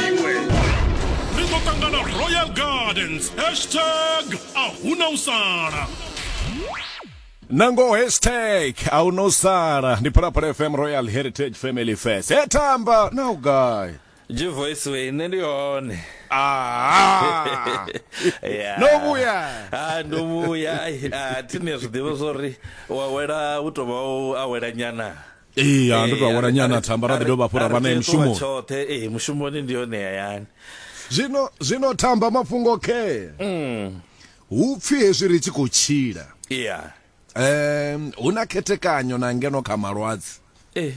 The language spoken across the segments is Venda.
iwe ri ḓo ṱangana royal gardens hashtag a huna u sala nangoho hashtag a huna u sala ndi phalaphala fm royal heritage family fest he tamba na u gai G voice way nṋe ndi hone Ah. Yeah. no vhuya Ah, ndo vhuya Ai, ah, thini ya zwiḓivha zwori wa wela u tovha u awela nyana ee ya ndo tou awela nyana thamba ra ḓi dovha hafhu ra vha naye mushumoni tshoṱhe ee mushumoni ndi yone hayani zwino zwino thamba mafhungo khe mm. hu pfhi hezwi ri tshi khou tshila yeah. um hu na khethekanyo na ngeno kha malwadze eh.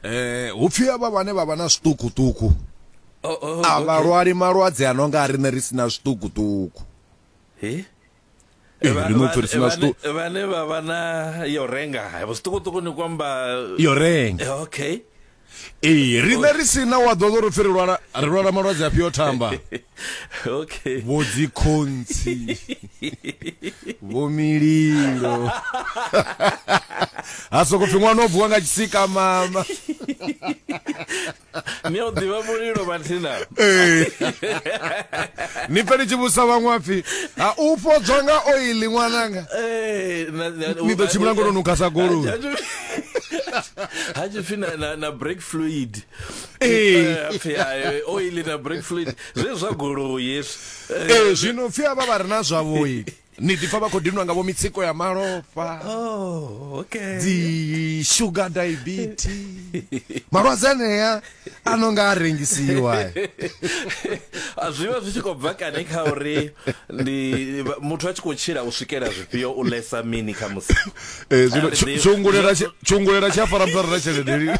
eh hu pfhi avha vhane vha vha na zwiṱukuṱuku oh, oh, a vha lwali malwadze a no nga a riṋe ri si na zwiṱukuṱuku Eh, eh, ri no pfirisa na sto vhane vha vha na yo renga vho sṱukuṱuku ni kwamba yo renga eh, okay ee riṋe ri sina wa ḓoḓo ro pfi ri lwala ri lwala malwadze afhio thamba okay vho dzikhontsi vho mililo ha soko pfi ṅwana o vuwa nga tshisika mama ni a u ḓivha mulilo mathina eh. ni pfe ni tshi vhusa vhaṅwe pfi ha u fhodzwa nga oili ṅwananga eh, ni ḓo tshimbila ngono nukha sa goloi ha tshi pfi na break fluid eh. pfi oili na break fluid zwe zwa goloi hezwi zwino pfi avha vha re na zwavhoili ni ḓipfa vha khou dinwa nga vho mitsiko ya malofha oh, okay. dzi sugar diabetes malwadze anea a no nga a rengisiwa zwi vha zwi tshi khou bva kani kha uri ndi muthu a tshi khou tshila u swikela zwifhio u lesa mini kha musi eh, tshungulela tshi a fara muthu a re na tshelede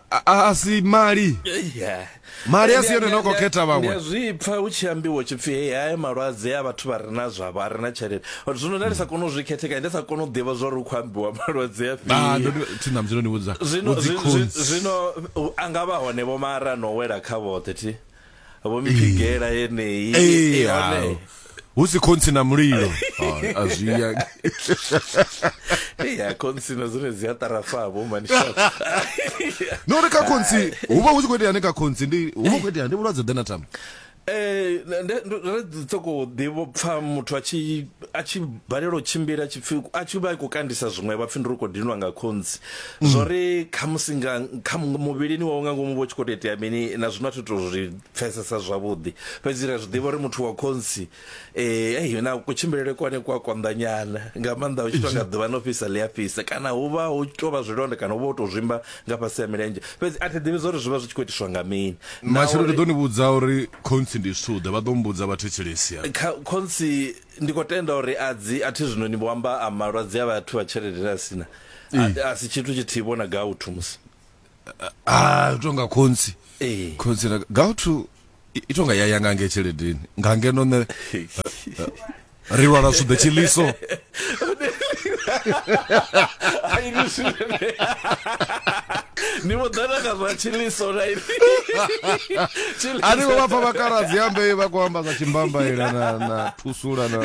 a, a si mali Yeah. Mali a si yone Ndi- no khou ndi- khetha vhaṅwe. ndi a zwi pfa hu tshi ambiwa tshi pfi hei haya malwadze a vhathu vha re na zwavho a re na tshelede Uri zwino nda ndi sa kone u zwi khethekanya ndi sa kone u ḓivha zwa uri hu khou ambiwa malwadze a Ah, ndo fhio ndi- thi na mdzilo ni vhudza. zwino Vhudzi zwi- zwi- khonzi. zwino u- a nga vha hone vho mara no wela kha vhoṱhe thi vho mphigela yeneyi Ee, Eh, hone. ao. hu si khontsi na mulilo Ah, a zwi ya Ei, a khontsina dzine dzi a tarafa vho manishafa no ri kha khontsi hu vha hu tshi khou itea ni kha khontsi ndi hu vha hu khou itea ndi vhulwadze ḓe na tama Eh, nda- nda- ndo- ndo ḓi soko ḓivho pfa muthu a tshi a tshi balelwa u tshimbila a tshi pfi a tshi vha i khou kandisa zwiṅwe vha pfi ndi ri khou dinwa nga khonzi mm. zwo ri khamusi nga kha muvhilini wawe nga ngomu vho tshi khou tou itea mini na zwino a thi to zwi pfesesa zwavhuḓi fhedzi ri a zwi ḓivha uri muthu wa khonsi um na kutshimbilele kwane ku a konḓanyana nga maanḓa u tshi tou nga ḓuvha no fhisa ḽi a fhisa kana hu vha hu tshi tou vha zwilonda kana hu vha hu tou zwimba nga fhasi ya milenzhe fhedzi a thi ḓivhi zwa uri zwi vha zwi tshi khou itiswa nga mini matshelo ndi ḓo ni vhudza uri khonsi ndi suḓe vha ḓo mbudza vhathetshelesi khonsi ndi khou tenda uri a dzi a thi zwino ni vho amba a malwadze a vhathu vha tshelede na sina a si tshithu tshithihi vhona gauthu musi a u tonga khonsi khonsi na gauthu i tonga ya ya ngange tsheledeni ngange no ne ri lwala suḓe tshiliso ni vho ḓana kha zwa tshiliso na ini ani vho vha pfa vhakaladzi ambe vha khou amba zwa tshimbambaila na na thusula na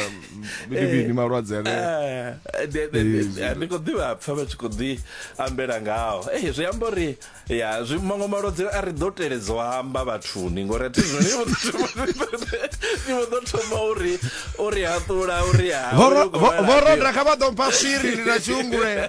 maybe ni malwadze ane Eh, de- de- de- de- ndi khou ḓivha pfa vha tshi khou ḓi ambela ngao Eh, zwi amba uri ya zwi maṅwe malwadze a ri ḓo teledza u amba vhathuni ngori a thi zwone vho ḓo thoma- ni vho ḓo thoma uri uri haṱula uri ha Vho ro- vho- vho roda kha vha ḓo mpha swiri ndi na tshiungulela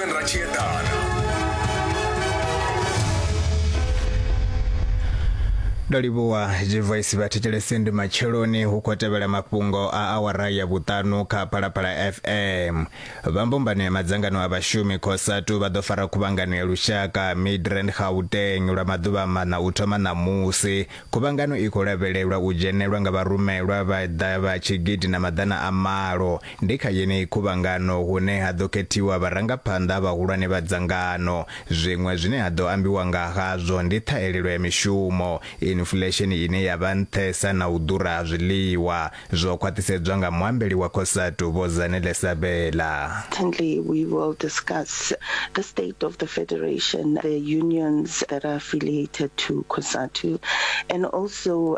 ra tshi eḓana ndo livhuwa zwivoisi vha thetshelese ndi matsheloni hu khou tevhela mafhungo a awara ya vhuṱanu kha phalaphala fm vha mbumbano ya madzangano a vhashumi khosatu vha ḓo fara khuvhangano ya lushaka midrand gauteng lwa maḓuvha maṋa u thoma ṋamusi khuvhangano i khou lavhelelwa u dzhenelwa nga vharumelwa vha ḓa vha tshigidi na maḓana a malo Ndi kha yeneyi khuvhangano hune ha ḓo khethiwa vharangaphanḓa vhahulwane vha dzangano. Zwiṅwe zwine ha ḓo ambiwa nga hazwo ndi ṱhahelelo ya mishumo, infulesheni ine ya vha nṱhesa na u ḓura ha zwiḽiwa, zwo khwaṱhisedzwa nga muambeli wa Cosatu Vho Zanele Sabela. Secondly, we will discuss the state of the federation, the unions that are affiliated to Cosatu and also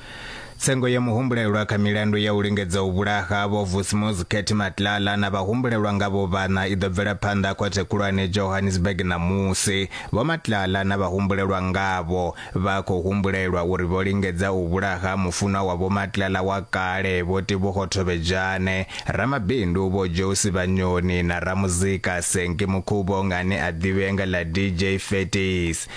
Tsengo ya muhumbulelwa kha milandu ya u lingedza u vhulaha Vho Vusmuzi Ketty Matlala na vhahumbulelwa nga vho vhaṋa i ḓo bvela phanḓa Khothe Khulwane Johannesburg ṋamusi. Vho Matlala na vhahumbulelwa ngavho vha khou humbulelwa uri vho lingedza u vhulaha mufunwa wa Vho Matlala wa kale Vho Tebogo Thobejane, ramabindu Vho Josi Vhanyoni na ramuzika Senki Mukhubong ane a ḓivhea nga ḽa DJ Fetties.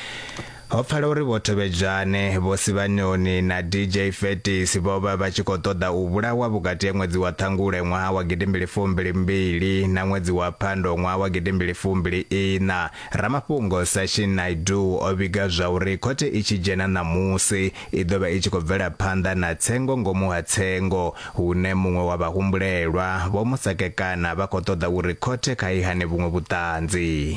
Ho pfala uri Vho Thovhedzwane, Vho Sivhanoni na DJ Fetis vho vha vha tshi khou ṱoḓa u vhulawa vhukati ha ṅwedzi wa Ṱhangule ṅwaha wa gidimbili fumbili mbili na ṅwedzi wa Phando ṅwaha wa gidimbili fumbili iṋa. Ramafhungo Sachin Naidoo o vhiga zwauri khothe i tshi dzhena ṋamusi, i ḓo vha i tshi khou bvela phanḓa na tsengo ngomu ha tsengo, hune muṅwe wa vhahumbulelwa, Vho Musakekana vha khou ṱoḓa uri khothe kha i hane vhuṅwe vhuṱanzi.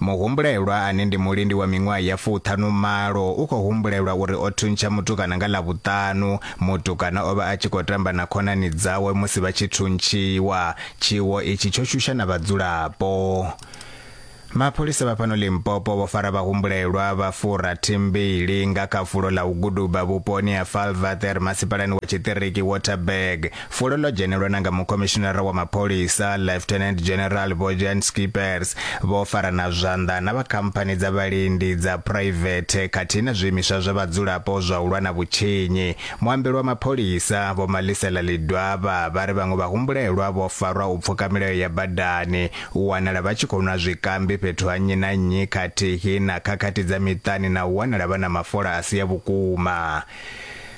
Muhumbulelwa ane ndi mulindi wa miṅwaha ya fuṱhanu malo u khou humbulelwa uri o thuntsha mutukana nga Ḽavhuṱanu. Mutukana o vha a tshi khou tamba na khonani dzawe musi vha tshi thuntshiwa. Tshiwo itshi tsho shusha na vhadzulapo. Mapholisa vha fhano Limpopo vho fara vhahumbulelwa vha furathi mbili nga kha fulo ḽa u guduba vhuponi ha Valvather masipalani wa tshiṱiriki Waterberg. Fulo ḽo dzhenelwa na nga mukhomishinara wa mapholisa Lieutenant General Vho Jan Schippers vho fara na zwanḓa na vha khamphani dza vhalindi dza private khathihi na zwiimiswa zwa vhadzulapo zwa u lwa na vhutshinyi. Muambeli wa mapholisa Vho Malisela Lidwaba vha ri vhaṅwe vhahumbulelwa vho farwa u pfuka milayo ya badani, u wanala vha tshi khou nwa zwikambi fhethu ha nnyi na nnyi khathihi na khakhathi dza miṱani na u wanala vha na mafola a si a vhukuma.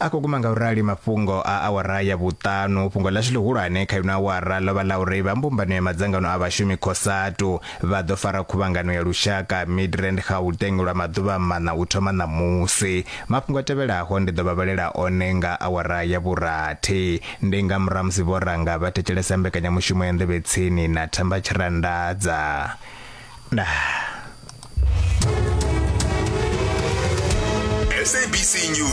a khou guma nga u rali mafhungo a awara ya vhuṱanu fhungo ḽashu ḽihulwane kha ino awara ḽo vha ḽa uri vha mbumbano ya madzangano a vhashumi cosatu vha ḓo fara khuvhangano ya lushaka midrand gauteng lwa maḓuvha maṋa u thoma ṋamusi mafhungo a tevhelaho ndi ḓo vha vhalela one nga awara ya vhurathi ndi nga murahu musi vho ranga vha thetshelesa mbekanyamushumo ya nḓevhe tsini na thamba tshirandadza nah. SABC News.